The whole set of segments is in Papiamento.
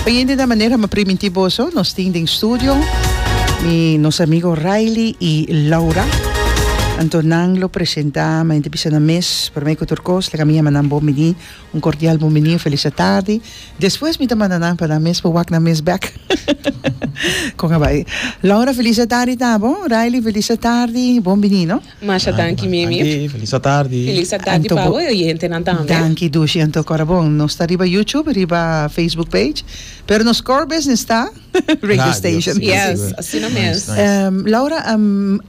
Oyente ta manera mi a primintí boso, nos tin den studio mi nos amigo Rylie i Laura. Anto nan lo presentá, mi ayente bisa na mes, promé ku tur kos laga mi a mandan bon biní, un kordial bon biní, un felis atardi. Despues mi ta manda nan pa nan mes pa wak nan mes bèk. Kon a bai. Laura, felis atardi ta bo. Rylie, felis atardi. Bon biní, no. Masha danki mimi. Danki, felis atardi. Felis atardi pa bo e oyentenan tambe. Danki Dushi, anto kora bon. Nos ta riba YouTube, riba Facebook page, pero nos core business ta radio station. Radio, yes. Yes, asina mes. Nice, nice. Laura,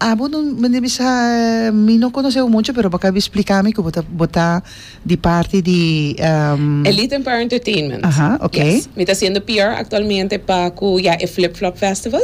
abo no mester bisa, mi no conoce bo mucho, pero bo a cabi splica mi cu bo ta, bo ta. Di parti di e. Elite en Power Entertainment. Aha, ok. Yes. Mi ta siendo PR actualmente pa cu ya e Flip Flop Festival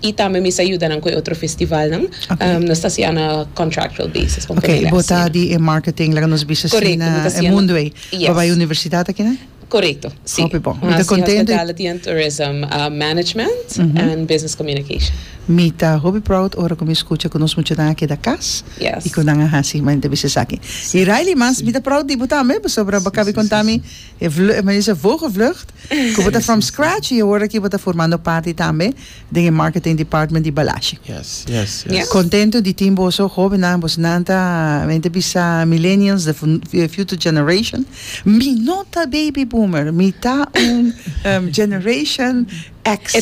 y tambe mi sa yuda nan cu e otro festivalnan. Ok. Nos ta haciendo on a contractual basis pa un Ok, ponerle bo ta asina. di e marketing, laga nos bisa Correcto, asina mi ta e haciendo. mundo ey. Bo Yes. bai universidad aki nan? Korekto, si. Hopi bon. Mi ta kontento. Hospitality and Tourism, Management and Business Communication. Mi ta hopi proud ora ku mi skucha ku nos muchanan a keda kas i ku nan a hasi manera bisti esaki. I Riley, mas mi ta proud di bo tambe pasobra bo a kabi konta mi e vlucht, men dice vogevlucht, ku bo ta from scratch i awor aki bo ta formando parti tambe den e marketing department di Balashi. Mi contento di tin boso hobennan, boso nan ta men ta bisa millennials the future generation, mi no ta baby boomer mi ta un generation X,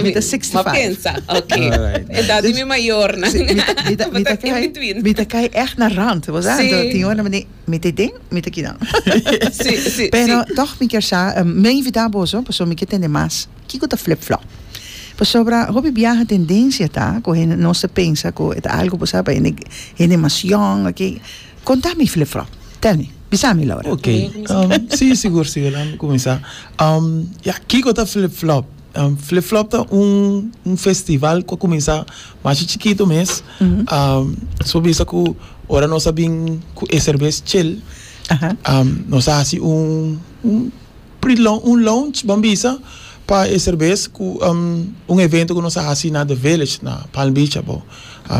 mi ta sixty five, mi ta kai echt na rand, boso sa anto tin ora mi ta e den mi ta kinan, pero toch mi kier sa, mi a invita boso pasobra mi kier tende mas. Kiko ta flip-flop? Pasobra hopi biaha tendencia ta cu hende nos ta pensa cu e ta algo bo sa pa hende hende mas yong ok conta mi flip-flop tell me bisa mi Laura. Ok um si sigur sigur lami cuminsa um ya kiko ta flip-flop? Um flip-flop ta un un festival cu a cuminsa masha chikito mes um su bisa cu ora nos a bin cu e cervez chel um nos a hasi un un. Pri lo un lounge ban bisa pa e serbes ku un evento ku nos a hasi na The Village na Palm Beach abo,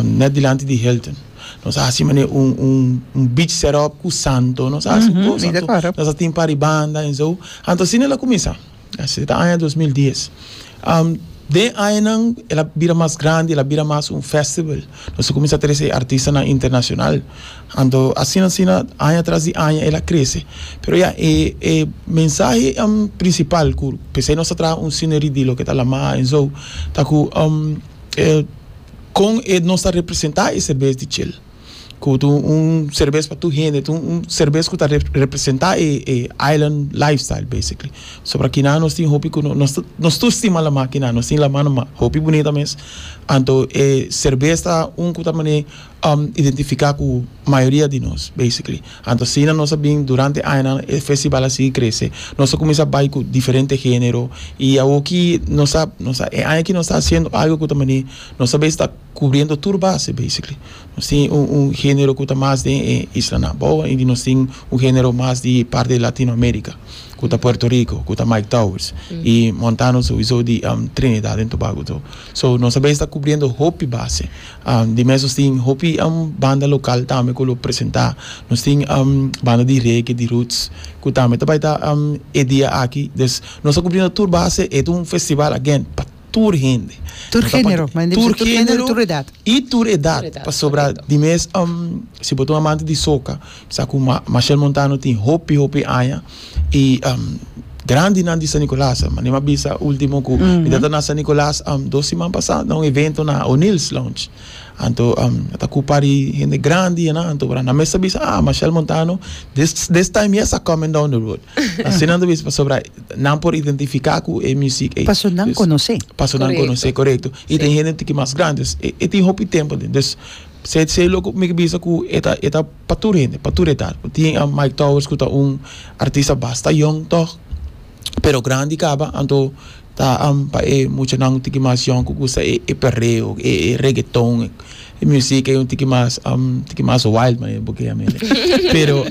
net dilanti di Hilton. Nos a hasi manera un un beach set up ku santo, nos a hasi un bon santo, nos a tin paribanda en so. Anto asina el a kuminsá, esei ta aña dos mil dies. Den añanan el a bira mas grandi, el a bira mas un festival, nos a kuminsá trese artistanan internashonal. Anto asina asina aña tras di aña el a crece. Pero ya e e mensahe principal cu p'esey nos ta traha un scenery di loke ta Lamaha en zo ta cu con e nos ta representa e serbes di chel. Cu ta un serbes pa tur hende, ta un serbes cu ta representa e e island lifestyle basically. So pasobra kinan nos tin hopi cu nos nos tur stima Lamaha kinan, nos tin Lamaha na ma hopi bunita mes. Anto e serbes ta un cu ta mane. identifica cu mayoria di nos basically. Anto asina nos a bin durante añanan e festival a sigui crece. Nos a cuminsa bay cu diferente genero y awoki nos a nos a e aña aki nos ta haciendo algo cu ta mane nos a bes ta cubriendo tur base basically. Nos tin un un genero cu ta mas den e Isla Naboa y nos tin un genero mas di parte di Latino America cu ta Puerto Rico cu ta Mike Towers y Montano sowiso di Trinidad en Tobago tur. So nos a bes ta cubriendo hopi base. Di mes nos tin hopi banda local tambe cu lo presenta. Nos tin banda di reggae, di roots, cu tambe ta bay ta e dia aki. Des nos a cubrindo tur base. E ta un festival again pa tur hende. Tur genero, manda di tur genero y tur edad. Pasobra di mes si bo ta un amante di soca. Sa cu Machel Montano tin hopi hopi aña y grandinan di San Nicolas. Manera m'a bisa ultimo cu mi ta na San Nicolas dos siman pasa na un evento na O'Neill's Lounge. Anto a ta cu par di hende grandi enan. Anto pasobra nan mes ta bisa ah Machel Montano this time yes a coming down the road. Asina nan ta bisa pasobra nan por identifica cu e music ey. Paso nan conoce. Paso nan conoce, corecto. Y ten hende tin ki mas grandi. E tin hopi tempo. Sey sey lo cu mi ke bisa cu e ta e ta pa tur hende pa tur edad bo tin a Mike Towers cu ta un artista basta yong tog pero grandi caba anto ta am pa e muchanan un tiki mas yong cu gusta e e perreo e e reggaeton e musiek ey un tiki mas tiki mas wild manera bo key ami pero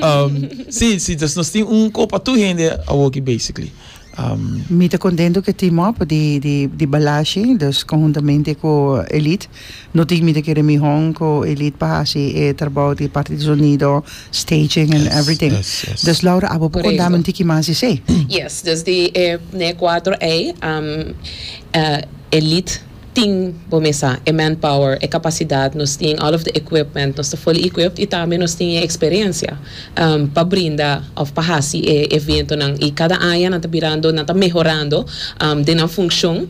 si si nos tin un co pa tur hende awoki basically. Am. Mi ta contento cu team up di di Balashi dus conjuntamente cu Elite no tin mi ta kere mi hon cu Elite pa haci e trabao di parte di sonido, staging and everything. Yes, yes, yes. Dus Laura abo por contamen un tiki mas di esey? Yes, desde e cuatro ey am Elite. tin bo mesa e manpower, e capacidad, nos tin all of the equipment, nos ta fully equipped y tambe nos tin e experiencia pa brinda of pa haci e eventonan y cada aña nan ta birando, nan ta mehorando den nan funcion,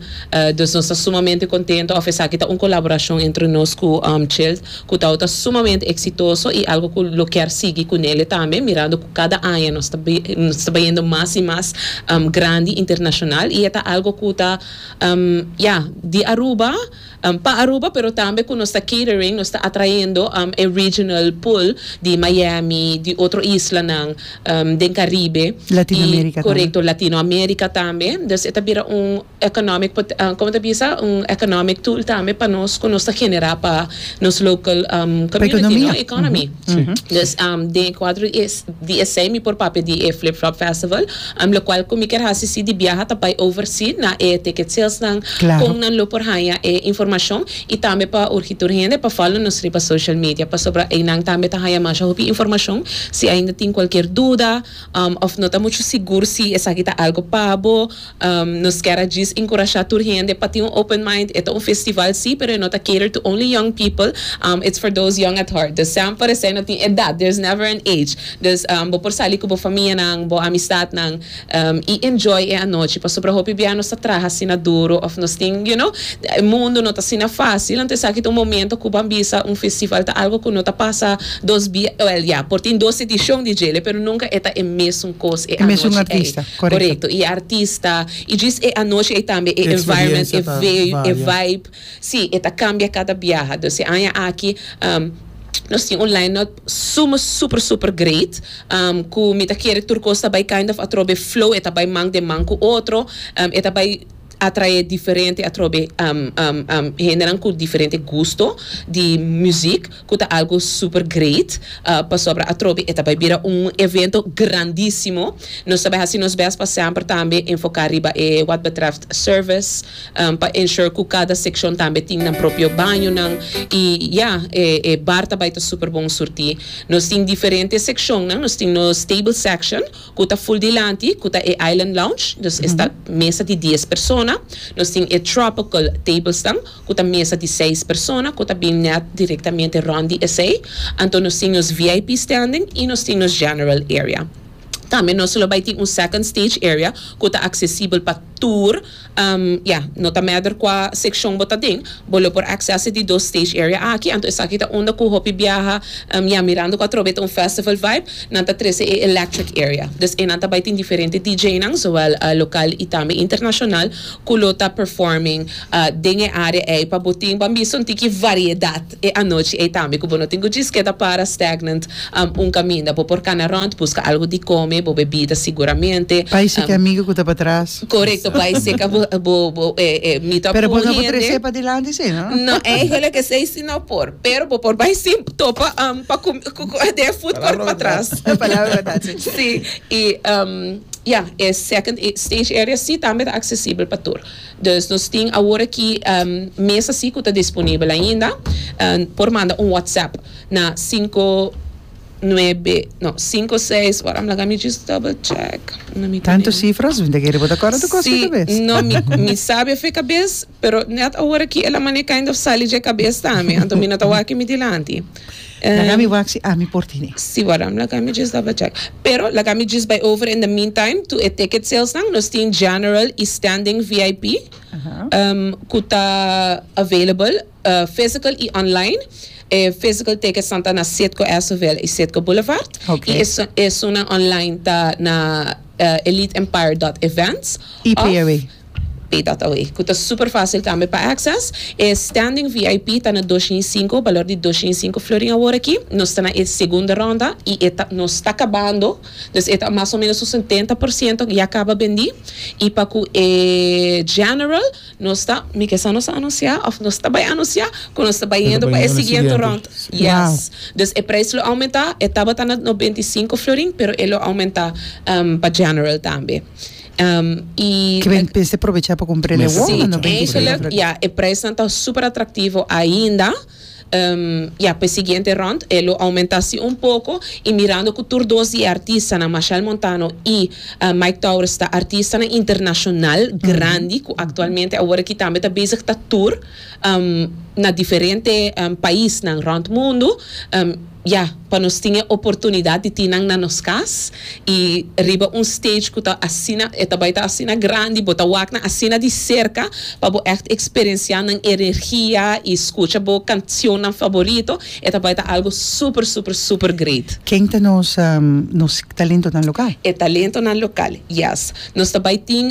dus nos ta sumamente contento of esaki ta un colaboracion entre nos cu Child cu ta ota sumamente exitoso y algo cu lo kier sigui cu Nele tambe mirando cu cada aña nos ta nos ta bayendo mas y mas grandi internacional y e ta algo cu ta Ya, di Aruba, pa Aruba pero tambe cu nos ta catering, nos ta atraendo e regional pool di Miami, di otro islanan den Caribe y corecto Latinoamerica tambe. Dus e ta bira un economic, como ta bisa? Un economic tool tambe pa nos cu nos ta genera pa nos local community, no? Economy. Dus den e cuadro di esey mi por papia di e Flip Flop Festival. Am locual cu mi kier haci si di biaha ta bay oversee na e ticket sales nan con nan lo por hanja e informacion y tambe pa urgi tur hende pa follow nos riba social media pasobra eynan tambe ta hanja masha hopi informacion si ainda tin cualkier duda of no ta mucho sigur si esaki ta algo pa bo nos kier a djis incurasha tur hende pa tin un open mind e ta un festival si pero e no ta cater to only young people it's for those young at heart dus sean por esey no tin edad there's never an age. Dus bo por sali cu bo famianan, bo amistadnan y enjoy e anochi pasobra hopi bia nos ta traha asina duro of nos tin, you know, e mundo no ta asina facil, anto esaki ta un momento cu ban bisa un festival ta algo cu no ta pasa dos bia, well ya, por tin dos edicion di djele pero nunca e ta e mesun cos e anochi ey, corecto, y e artista y djis e anochi ey tambe e environment, e veu, e vibe, si, e ta cambia cada biaha, dus e aña aki nos tin un line-up. Suma super super great cu mi ta kere tur cos ta bay kind of atrobe flow e ta bay man den man cu otro e ta bay atrae diferente atrobe hendenan cu diferente gusto di muziek cu ta algo super great pasobra atrobe e ta bay bira un evento grandisimo nos ta bay haci nos best pa semper tambe enfoca riba e wat betreft service Pa ensure cu cada seccion tambe tin nan propio bañonan. Y ya, e e bar ta bay ta super bon surti. Nos tin diferente seccionnan. Nos tin nos table section cu ta full dilanti, cu ta e island lounge, nos esta mesa di dies persona. Nos tin e tropical tablesnan cu ta mesa di seis persona, cu ta bin net directamente rond di esey. Anto nos tin nos VIP standing y nos tin nos general area. Tambe nos lo bay tin un second stage area cu ta accesibel pa tur. Ya, no ta mèder kua sekshon bo ta den, bo lo por aksès'e di dos stage area aki. Anto esaki ta unda ku hopi biaha, ya mirando ku atrobe ta un festival vibe, nan ta trese e electric area. Dus eynan ta bai tin diferente DJnan, zowel lokal i tambe internashonal, ku lo ta performing den e área ei pa bo tin, bo a mista un tiki variedat. E anochi ei tambe ku bo no tin ku djis keda para Stagnant un kaminda, bo por kana rònt, buska algu di kome, bo bebida siguramente. Bai seki amigu ku ta patras. Korekto, bai seka bo bo bo e meet up Pero ku bo un no por hende. trese padilanti si no? No, eigenlijk is ei si no por. Pero bo por bai si topa pa kume ku ku den e food court Palabra patras. verdad. Palabra verdad, si. Si, i ya, e second stage area si tambe ta aksesibel pa tur. Dus nos tin awor aki mes asi ku ta disponibel ainda. Por manda un WhatsApp na sinku nuebe no sinku seis wak am laga mi just double check un amigu di Tantu mi. sifras winti a kere bo ta kòrda tu kos si kabes. no mi mi sabi afe kabes pero nèt awor aki el a maneka ainda sali dje kabes tambe anto mi no ta wak aki mi dilanti. Laga mi wak si ami por tine. Si waram laga mi djis daba check. Pero laga mi djis bay over in the meantime to e ticket sales nan. Nos tin general y standing vip cu ta available physical y online. E physical tickets nan ta na Citgo Estville y Citgo Boulevard y esun nan online ta na eliteempire dot events of. P'e dat awey, ku ta súper fásil kambia pa Access, e Standing VIP ta na dos shi i sinku, balor di dos shi i sinku florin awor aki. Nos ta na e segunda rònda i e ta nos ta kabando, dus e ta mas o ménos un sententa por siento ya kaba bendí. I pa ku e General nos ta, mi ke sa nos a anunsiá òf nos ta bai anunsiá ku nos ta bai hendo pa e siguiente rònt. Yes, dus e preis lo oumentá, e tabata na noventa i sinku florin pero e lo oumentá pa General tambe. Ke ben p'ese probechá pa kumprá el e wòm, manda no ben kisa el a fla. E preisnan ta super atraktivo ainda. Ya, p'e siguiente rond e lo oumentá sí un poko i mirando ku tur dos di e artistanan, Machel Montano i Mike Towers ta artistanan internashonal grandi ku aktualmente awor aki tambe ta bezig ta tur na diferente paisnan rond mundu. Ya, pa nos tin e oportunidat di tin nan na nos kas i riba un stage ku ta asina, e ta bai ta asina grandi, bo ta wak nan asina di serka pa bo ègt eksperensiá nan energia i skucha bo kanshonnan faborito, e ta bai ta algu super, super, super great. Ken ta nos nos talentonan lokal? E talentonan lokal, yes. Nos ta bai tin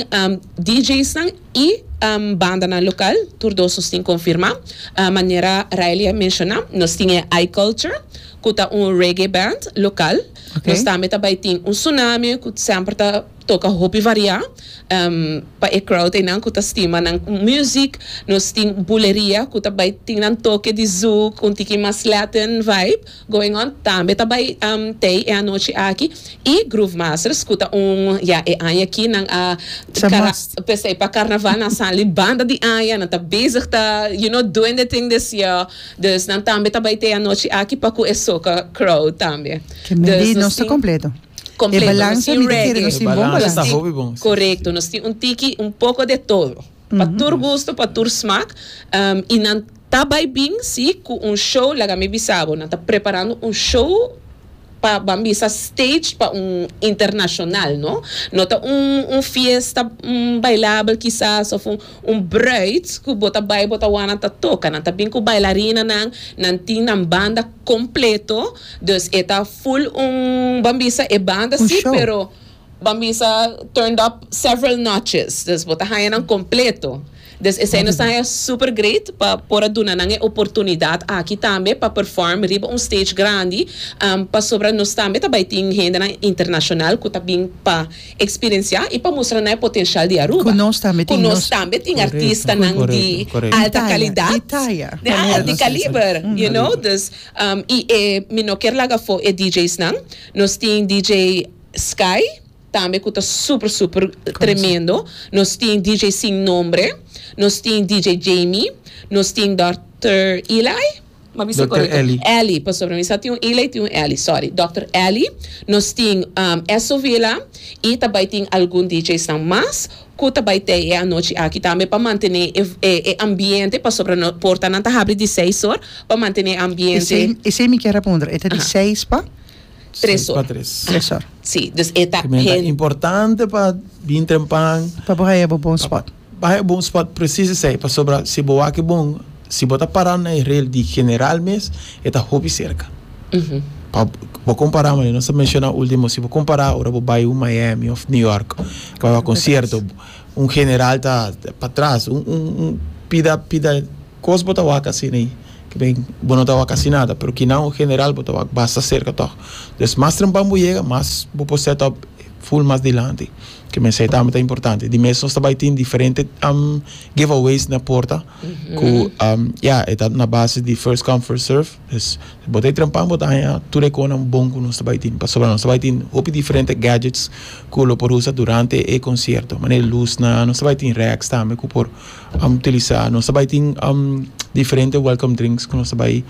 DJsnan. E bandanan local tur dos nos tin confirma. Manera Raeli a menciona nos tin e I Culture cu ta un reggae band local. Nos tambe ta bay tin un Tsunami cu semper ta toca hopi varia pa e crowd eynan cu ta stima nan music. Nos tin Buleria cu ta bay tin nan toke di zouk, un tiki mas Latin vibe. Going On tambe ta bai tei e anochi aki y Groove Masters cu ta un ya e aña aki nan a p'esey pa carnaval nan a sali banda di aña nan ta bezig ta you know doing the thing this year dus nan tambe ta bai tei anochi aki pa cu e soca crowd tambe dus nos tin completo nos tin reggae nos tin corecto nos tin un tiki un poco de todo. Pa tur gusto, pa tur smak, y nan ta bay bin si cu un show, laga mi bisa bo, nan ta preparando un show pa ban bisa staged pa un internacional, no. No ta un un fiesta bailabel kisas of un un bruid cu bo ta bay bo ta wou nan ta toca, nan ta bin cu bailarinanan, nan tin nan banda completo, dus e ta full un, ban bisa e banda si pero. Bambisa turned up several notches, dus bo ta haña nan kompleto. Dus esei nos ta haña super great pa por a duna nan e oportunidat aki tambe pa perform riba un stage grandi, pasobra nos tambe ta bai tin hendenan internashonal ku ta bin pa eksperensiá i pa mustra nan e potenshial di Aruba. Ku nos tambe tin nos. Ku nos tambe tin artistanan di alta kalidat. Di taya. Di taya. Di kaliber, you know, dus i e mi no kier laga afó e DJsnan. Nos tin DJ. Sky tambe ku ta super super tremendo nos tin DJ sin nombre nos tin DJ Jamie nos tin Doctor Eli ma bisa korekto Eli pasobra mi sa tin un Eli tin un Eli sorry Doctor Eli nos tin Esso Villa i ta bai tin algun DJ's nan mas ku ta bai tei e anochi aki tambe pa mantene e ambiente pasobra nos portanan ta habri di seis or pa mantene e ambiente. Esei mi kier a puntra e ta di seis pa. Tresor. Tresor. Si, dus e ta. Kimen ta importante pa bin trempan. Pa bo haya bo bon spot. Haya bon spot presis esei, pasobra si bo wak e bon, si bo ta para na e rel di general mes, e ta hopi serka. Pa bo kompara maneira nos a menshona ultimo, si bo kompara ora bo bai un Miami òf New York pa concierto, un general ta patras, un pida, pida. Kos bo ta wak asina ei? Ke ben, bo no ta wak asina nada, pero kinan o general bo ta wak basta serka tòg. Entonces, mas trempan bo yega, mas bo por set up full mas dilanti. Ke mester tambe ta importante. Di mes nos ta bai tin diferente giveaways na porta, ku ya, e ta na base di first come, first serve. Entonces, si bo ta e trempan, bo ta haña tur e konan bon ku nos ta bai tin. Pasobra nos ta bai tin hopi diferente gadgets ku lo por usa durante e concierto. Manera luznan, nos ta bai tin racks tambe ku por. utilisa. Nos ta bai tin diferente welcome drinks ku nos ta bai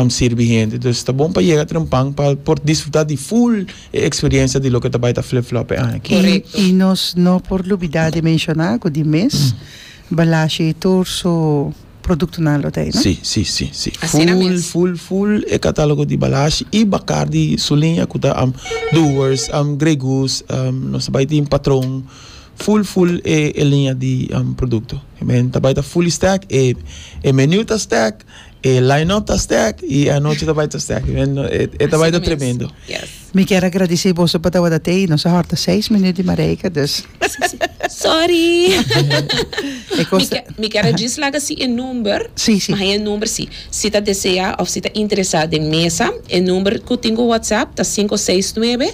sirbi hende. Dus ta bon pa yega trempan pa por disfruta di ful e eksperensia di loke ta bai ta Flip Flop e aña aki. I nos no por lubida di menshoná ku di mes Balashi i tur su produktonan lo ta ei, no? Si, si, si, si. Ful, ful, ful e katálogo di Balashi i Bacardi su liña ku ta Doers, Grey Goose, nos ta bai tin Patron Full full e e liña di produkto. Men ta bai ta fully stacked, e e menu ta stacked, e line up ta stacked i anochi ta bai ta stacked. Men no e e ta bai ta tremendo. Mi kier a gradisí boso pa tabata tei. Nos a hòrta seis minüt di Mareika, dus. Sòri. E kos ta. Mi kier a djis laga si e number. Sí, sí. Maha e number si si ta deseá òf si ta interesá den mesa. E number ku tin ku whatsapp ta sinku seis nuebe.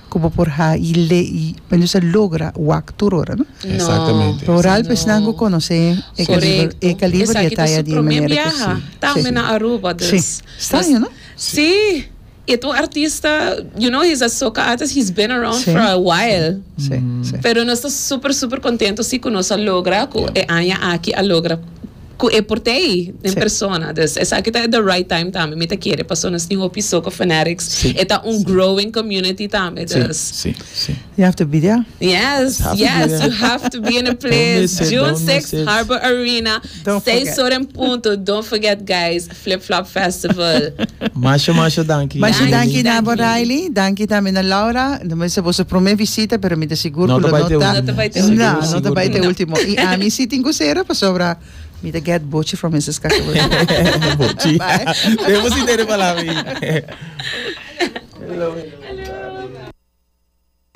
Cu bo por ha'i le y mester sa logra wak tur ora, no? Exactamente. No. Rural pues nan cu conoce e caliber, e caliber di e taya di manera cu si. Esaki ta su primer biaha. Tang me na Aruba dus. Si. Straño, no? Si. Y e tur artista, you know, he's a soca artist, he's been around for a while. Si. Si. Pero nos ta super, super contento si cu nos a logra cu e aña aki a logra. cu e por t'ey den persona dus esaki ta the right time tambe mi ta kere paso nos tin hopi soccer fanatics e ta un growing community tambe dus you have to be there yes yes you have to be in the place June six Harbor Arena seis ora en punto don't forget guys. Flip Flop Festival. Masha masha danki. Masha danki na bo Riley, danki tambe na Laura, no mester boso prome visita pero mi ta sigur ku lo no ta no ta bai te ultimo, na no ta bai te ultimo i ami si tin ku sera pasobra mi ta get bochi from Mister Scacavone. bochi debo si tene palabra i.